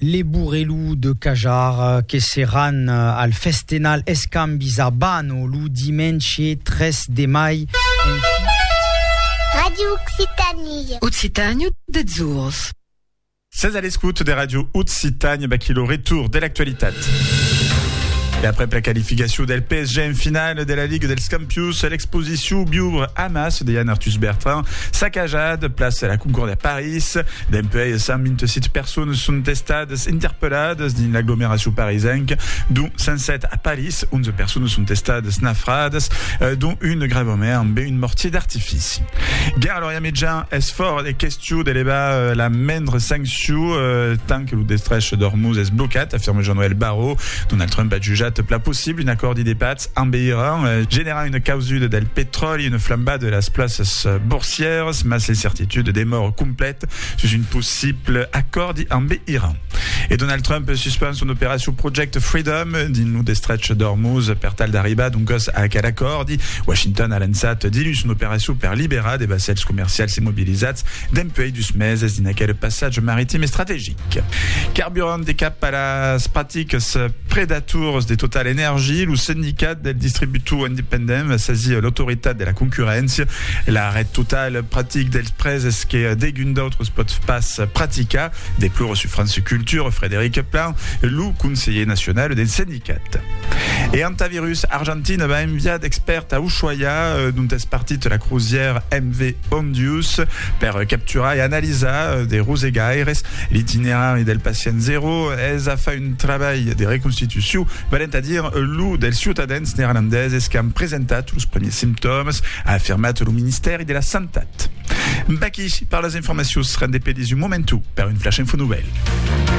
Les Bourrelous de Cajar que seràn al Festenal Escambis a Bano lo dimenge 3 de mai en fit. Radio Occitanie. Occitània deths ors. Sètz a l'escout de Radio Occitània, vaquí lo retour de l'actualitat. E aprèp la qualificacion del PSG en finala de la Liga dels Campions, l'exposició Suu biubre amas, deian Arthus Bertrand, sacajat, plaça la Concorde a París. Dempuèi, 127 personas son estadas interpelladas dins l'aglomeracion parisenca, dont 107 a París. 11 personas son estadas nafradas, dont un de gravament ambe un mortier d'artifici. Ger Lorian Mitjan es fòra de question d'elevar la mendre sanccion tant que lo destrech d'Ormuz es blocat, afirma Jean-Noël Barrot. Donald Trump a jutjat pla possible un acòrdi de patz. En Iran, generar una causuda del petròli, una flambada de las plaças borsièras, mas l'incertituda demòra completa sus un possible acòrdi amb Iran. E Donald Trump suspend son operacion Project Freedom dins lo destrech d'Ormuz per tal d'arribar doncas a aquel acòrdi. Washington a lançat diluns son operacion per liberar de vassèls comercials immobilizats dempuèi dus meses dins aquel passatge maritim estrategic. Carburant e cap a las practicas predators de Total Energy, lo Sindicat del Distributor Independent va sasir l'Autoritat de la Concurréncia. L'arrèst total practic dels prèses que degun d'autres pòt pas practicar, deplora sur France Culture Frédéric Plan, lo conselher nacional del Sindicat. E Hantavirus Argentina va enviar d'expèrts a Ushuaia, dont es partit la crusièr MV Ondius, per capturar e analizar de rosegaires l'itinerari del pacient zero. Es a far un trabalh de reconstitucion, valent a dire lo dels ciutadans neerlandeses qu'an presentat los primièrs simptòmas, a afirmat lo ministèri de la Santat. V'aquí per las informacions, rendepedís un momentu per un Flash Info Novèl.